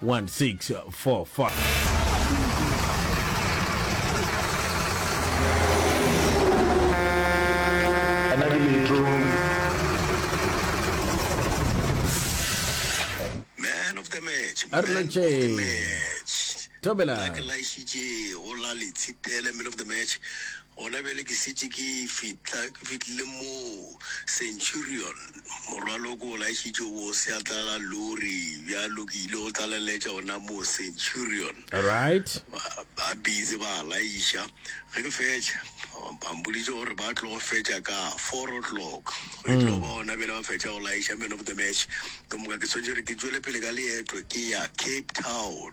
One, six, four, a re lantšhe thobela Gona bjale ke šetše ke fihla, ke fihlile moo Centurion, morwalo ke o laešitše go seatla ga lori, bjalo ke ile go tlaleletša gona moo Centurion. Right. Ba, ba busy ba laiša. Ge ke fetša, ba mpoditše gore ba tlo go fetša ka four o'clock, e tlo ba gona bjale ba fetša go laiša man of the match. Ka moka ke swanetše gore ke tšwele pele ka leeto ke ya Cape Town.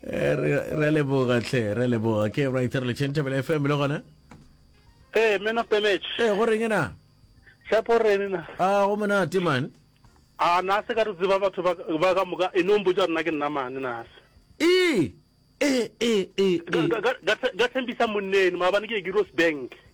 Eh, re re a leboga tlhe re a leboga ke right re le chentebele fm le gona ee men of the match ee go reng na tshepo rene na a go monate man a na se ka re tseba batho ba ba ka moka e no mpotsa rena ke nna mane na se ee ee ee ee ee. Ka- ka- ka- ka- ka thembisa monneno maabane ke ye ke rose bank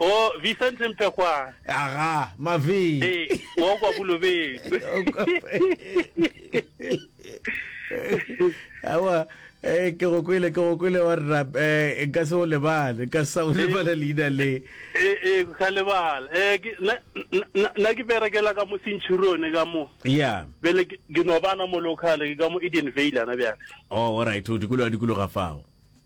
O, Vicente Mpekgwane. Aga, Mavee. Ee, wa kwa Bolobedu. Awa, eh, ke go kwele, ke go kwele wa rra, eh, nka se o lebale, nka sa o lebala leina le. Ee, ee, ke sa lebala. Eh, ke, na, na, na- na ke berekela ka mo Centurion ka mo. Yeah. Bele ke ke no bana mo local ke ka mo Eden Vale ana bjale. Oh, all right, o dikologa dikologa fao.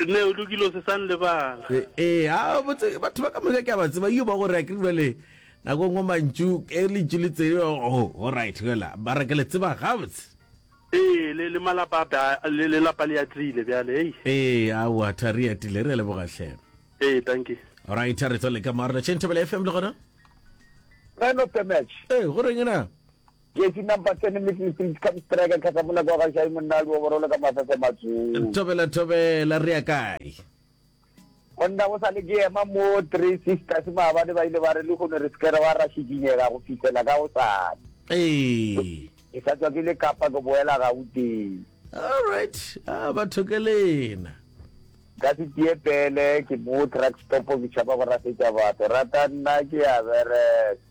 Nne o lokile o se sa nlebala. Ee, a botse batho ba ka moka ke a ba tseba yo ba gore a ke jale nako ngwe mantšu e le ntšu le tsebe o o right fela ba re ke le tseba gabotse. Ee, le le malapa ba le le lapa le atile bjale ei. Ee, a wa tha re atile re leboga hle. Ee, thank you. All right, re tswa le ka marlo. Chentebele FM le gona? Man of the match. Ee, go reng na? Jesse Nampa Sene Middle Street Come Striker Kgahla Moleko wa Gašai Monna a Luoboro Le Ka Mafese a Matswong. Thobela Thobela Re ya kae? Monna go sa le ke ema mo Three Sisters maabane ba ile ba re lehono re se ke ra ra šikinyega go fihlela ka gosane. Ee. Ke sa tswa ke le Kapa ke boela Gauteng. All right. Ah, ba thokelena. ka se tie pele ke mo truck stop ke tšhaba go rasetša batho rata nna ke a bereka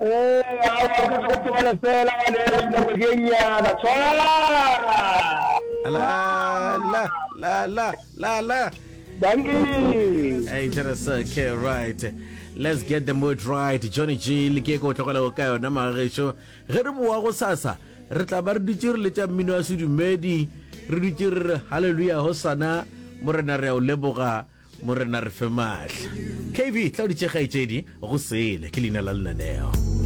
Ee, aowa, ke tlo go tlogela fela wa neela dinako di e nnyana. Tshwara! La la la la la la. Dankie! Hey, that is okay, right. Let's get the mood right. Johnny G, le ke ko tlogela go ka yona magagetšo. Ge re boa go sasa, re tla ba re dutše re letša mmino wa sedumedi, re dutše re re hallelujah hosana, morena re a o leboga. Morena re fe maatla. KB, Tla o di tše kgaetšedi, go sele, ke leina la lenaneo.